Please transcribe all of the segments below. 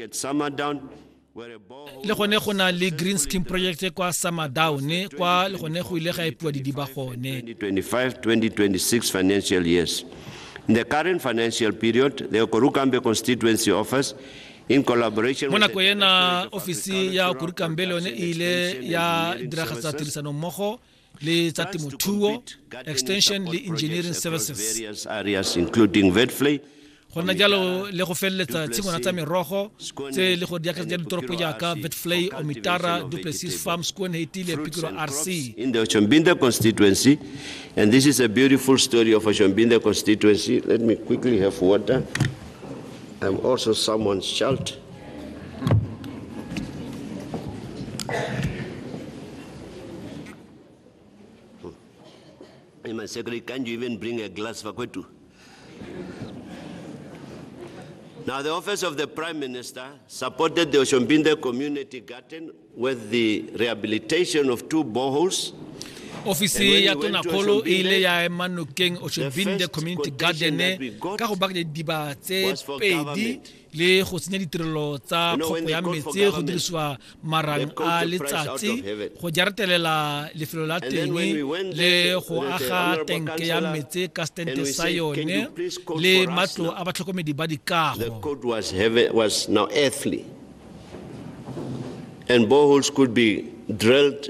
At Samadown, le gone go na le green scheme project kwa samadown kwa le gone go ile ga epiwa didiba gone 2025-2026 financial years in the current financial period the okorukambe constituency office in collaboration mo nako ena ofisi ya okorukambe le yone e ile ya diragatsa tirisano mmogo le tsa temothuo extension le engineering services go nna jalo le go feleletsa tshingwana tsa merogo tse le go di akaretsa ditoropo jaaka betflay omitara duplessis farm squan hetile pikiro rc in the Oshombinda constituency and this is a beautiful story of Oshombinda constituency let me quickly have water I'm also someone's child Hey, my secretary, can you even bring a glass for Kwetu? Now, the Office of the Prime Minister supported the Oshombinde Community Garden with the rehabilitation of two boreholes ofisi ya tona kgolo e ile ya ema nokeng oshobinde community garden ka go bakanya diba tse pedi le go tsenya ditirelo tsa kgoko ya metse go dirisiwa marang a letsatsi go jaretelela lefelo la teng le go aga tenke ya metse ka stente sa yone le matlo a batlhokomedi ba dikago and boreholes could be drilled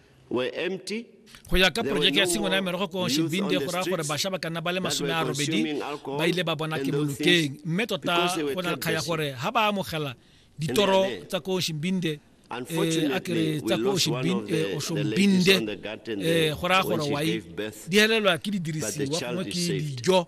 were empty go ya ka porojeke ya tshingwana ya merogo ko shibinde go raya gore bašwa ba ka nna ba le masome a robedi ba ile ba bona ke bolokeng mme tota go na kgaya gore ga ba amogela ditoro tsa ko shimbinde eh, a kere tsa ko oshombinde eh, eh, go raya gore wai di helelwa ke didirisiwa gongwe ke dijo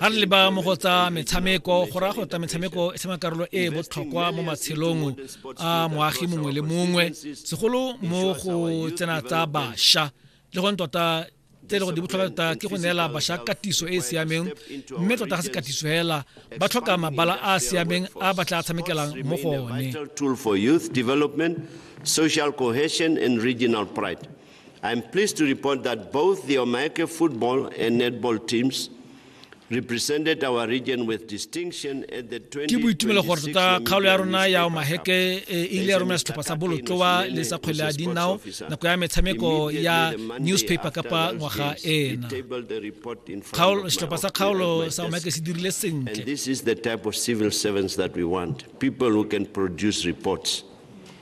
ga re leba mo go tsa metshameko go raya gore tsa metshameko e tshameka karolo e e botlhokwa mo matshelong a moagi mongwe le mongwe segolo mo go tsena tsa bašwa le gone tota tse e le gore di botlhokwa tota ke go neela bašwa katiso e e siameng mme tota ga se katiso fela ba tlhoka mabala a a siameng a ba tla tshamekelang mo go one social cohesion and regional pride I'm pleased to report that both the Omaeke football and netball teams represented our region with distinction at the 20 ke boitumelo gore tota kgaolo ya rona ya omaheke e ile ya romela setlhopha sa bolotloa le sa kgwele ya dinao nako ya metshameko ya newspaper kapa ngwaga ena setlhopha sa kgaolo sa omaheke se dirile sentle this is the type of civil servants that we want people who can produce reports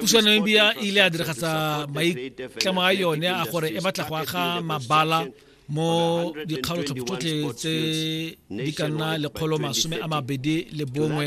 pusanong bia e ile ya diragatsa maitlamo a yone a gore e batla go aga mabala mo dikgaolotlhopho tsotlhe tse di ka nna lekgolo masome a mabedi le bongwe